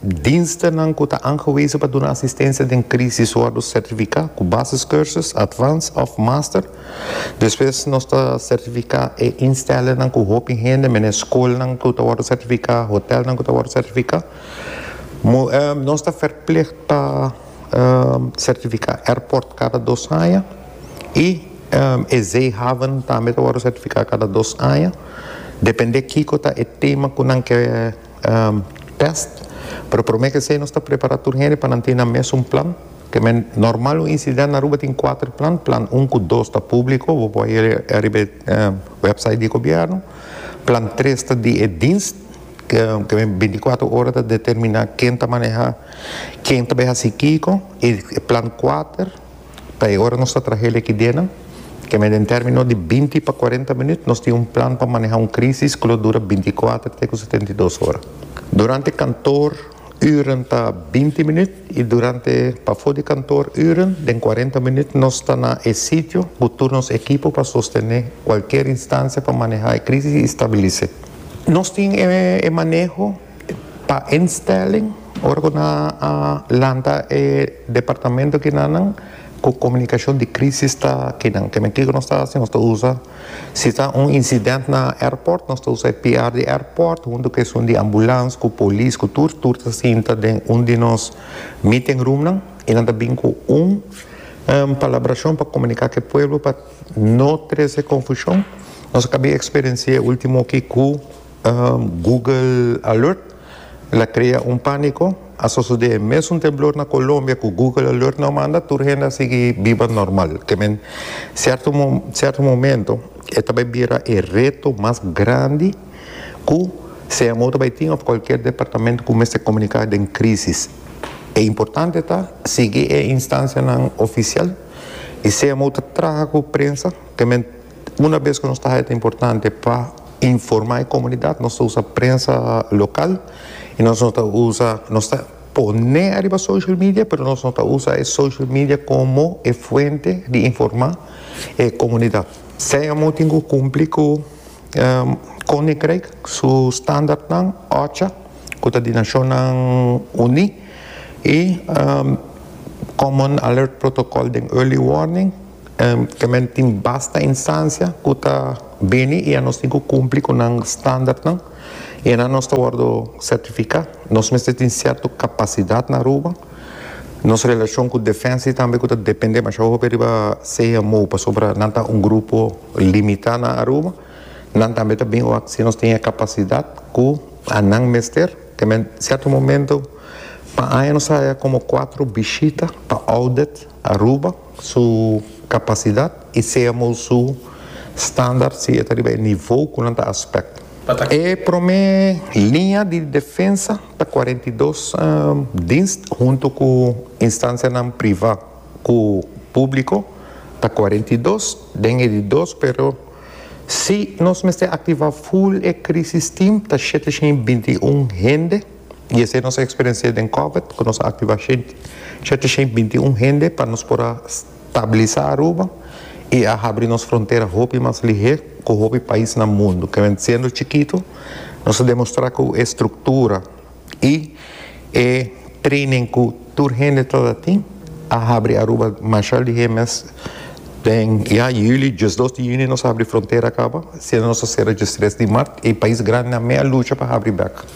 Dienstennan cu ta aangewezen pa duna asistencia den crisis wordo certifica cu basiscursus, advanced of master. Despues nos ta certifica e instellingnan cu hopi hende, menen schoolnan cu ta wordo certifica, hotelnan cu ta wordo certifica. Nos ta verplicht pa certifica airport cada dos aña y e zeehaven tambe ta wordo certifica cada dos aña, depende kico ta e tema cu nan ke. Pest, pero prome ke esei nos ta prepará tur hende pa nan tin na mesun plan, ke men normal un insidènt na Aruba tin kuater plan, plan un ku dos ta públiko, bo por hia ariba e wèpsait di gobièrnu, plan tres ta di e dins, ke men bintikuater ora ta determiná ken ta manehá, ken ta bai hasi kiko, i plan kuater. Ta e ora nos ta traha e likidenan. Kende den término di binti pa kuarenta minüt nos tin un plan pa manehá un krísis ku lo dura bintikuater te ku setenta i dos ora. Durante kantoor ürnan ta binti minüt i durante pafó di kantoor ürnan den kuarenta minüt nos ta na e sitio ku tur nos ekipo pa sostené kualkier instansia pa manehá e krísis i stabilis'é. Nos tin e maneho. Pa instelling, ora cu nan a lanta e departamento kinanan cu comunicacion di crisis ta kinan. Kimen kico nos ta haci? Nos ta usa, si ta un incident na airport, nos ta usa e PR di airport hunto cu esun di ambulance, cu polis, cu tur, tur ta sinta den un di nos meeting roomnan y nan ta bin cu un palabracion pa comunica cu e pueblo pa no trece confusion. Nos a cabia experiencia e ultimo aki cu. Google Alert la krea un pániko, a sosodé e mésun temblor na Kolombia ku Google Alert no a manda, tur hende a sigui biba normal. Kemen sierto sierto momento e ta bai bira e reto mas grandi ku CMO ta bai tin òf kualkier departamento ku mester komuniká den krísis. E importante ta sigui e instansianan ofisial i CMO ta traha ku prensa kemen Una bes cu nos ta haya ta importante pa informa e comunidad nos ta usa prensa local y nos no ta usa nos ta pone ariba social media pero nos no ta usa e social media como e fuente di informa e comunidad. Seiamo tin cu cumpli cu Koninkrijk su standaardnan, OCHA, cu ta di Nacionnan Uni y Common Alert Protocol den Early Warning, Te men tin basta insansia ku ta bini i a nos tin ku kumpli ku nan standartnan i anan nos ta wòrdu sertifiká. Nos mester tin sierto kapasidat na Aruba. Nos relashon ku Defensa i tambe ku ta dependé mashá hopi riba CMO pasobra nan ta un grupo limitá na Aruba. Nan tambe ta bin wak si nos tin e kapasidat ku anan mester. Te men sierto momento pa aña nos haya komo kuatro bishita pa audit. Aruba su capacidad y seamor su standard si e ta riba e nivo cu nan ta aspect. E prome liña di defensa ta cuarenta y dos dienst hunto cu instancianan priva cu publico ta cuarenta y dos den e di dos pero si nos mester activa full e crisis team ta shete shin binti un hende. y esei nos a experiencia den Covid cu nos a activa shete shen binti un hende pa nos por a stabiliza Aruba y a habri nos frontera hopi mas lihe cu hopi pais na mundo, kende siendo chikito nos a demostra cu e structura y e training cu tur hende ta ta tin a habri Aruba masha lihe mes den ya juli diesdos di juni nos a habri frontera caba siendo nos a cera diestres di mart y pais grandinan me a lucha pa habri bek.